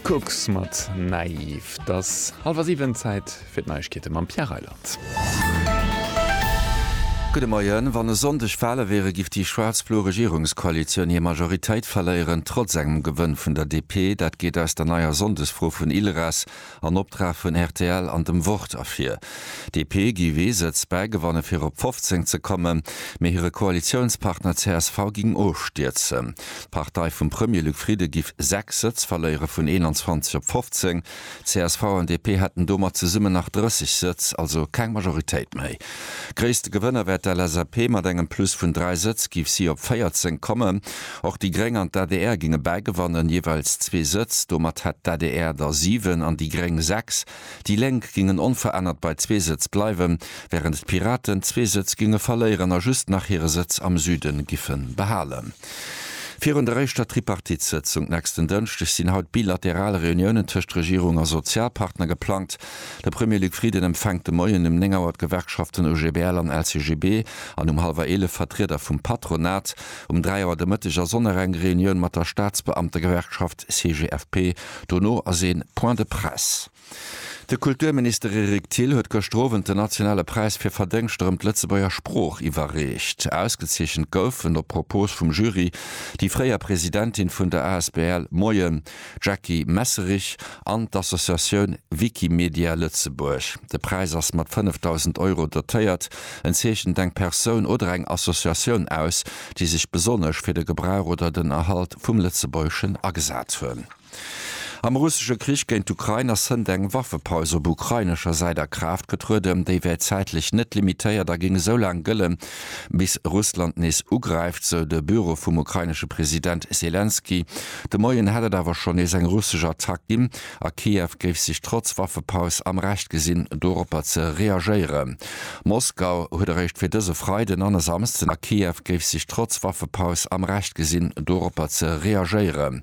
Kux mat Naiv. Et ass hallwer siwen, Zäit fir d'Neiegkeete mam Pierre Reyland. Gudde Moien. Wann e Sonndeg Wale wiere giff déi schwaarz-blo Regierungskoalitioun hir Majoritéit verléieren, trotz engem Gewënn vun der DP. Dat geet aus der neier Sonndesfro vun ILRAS En Optrag vun rtl an dem Wort ervir. DP giff ee Sëtz bäigewanne fir op 15 ze kommen, mee hire Koalitiounspartner csv ging ofstierzen. D'Partei vum Premier Luc Frieden giff 6 Sëtz verléiere vun 21 op 15. Csv an DP hätten domat zesummen nach 30 Sëtz, also keng Majoritéit méi. Gréisste Gewënner wär d'LSAP, mat engem Plus vun 3 Sëtz giff si op 14 kommen. Och déi Gréng an d'ADR géinge bäi gewannen, jeeweils zwee Sëtz. Domat hätt d'ADR der siwen an déi Gréng sechs. Déi Lénk géingen onverännert bei zwee Sëtz bleiwen, wärend d'Piraten zwee Sëtz géinge verléieren a just nach hire Sëtz am Süden giffe behalen. Virun der éischter Tripartite-Sëtzung nächsten Dënschdeg sinn haut bilateral Reuniounen tëscht Regierung a Sozialpartner geplangt. De Premier Luc Frieden empfänkt de Moien um 9 Auer d'Gewerkschaften OGBL an LCGB an um hallwer eelef Vertrieder vum Patronat. Um 3 Auer de Mëtteg ass och nach eng Reunioun mat der Staatsbeamtegewerkschaft CGFP, dono ass ee Point de presse. De Kulturminister Eric Thill huet gëschter Owend den nationale Präis fir Verdéngschter ëm d'Lëtzebuerger Sprooch iwwerreecht. Ausgezeechent goufen, op Propos vum Jury, déi fréier Presidentin vun der asbl Moien! Jackie Messerich an d'Associatioun Wikimedia Lëtzebuerg. De Präis ass mat 5.000 Euro dotéiert. En zeechent eng Persoun oder eng Associatioun aus, déi sech besonnesch fir de Gebrauch oder den Erhalt vum Lëtzebuergeschen agesat hunn. Am russesche Krich géint d'Ukrain ass hënt eng Waffepaus op ukrainescher Säit a Kraaft getrueden. Déi wär zäitlech net limitéiert a géing esou laang gëllen, Bis Russland nees ugräift, sou de Büro vum ukrainesche President Selenskyj. De Moien hätt et awer schonn nees eng russesch Attack ginn, a Kiew géif sech trotz Waffepaus am Recht gesinn, doropper ze reagéieren. Moskau huet eréischt fir dëse Freiden an e Samsden a Kiew géif sech trotz Waffepaus am Recht gesinn, doropper ze reagéieren.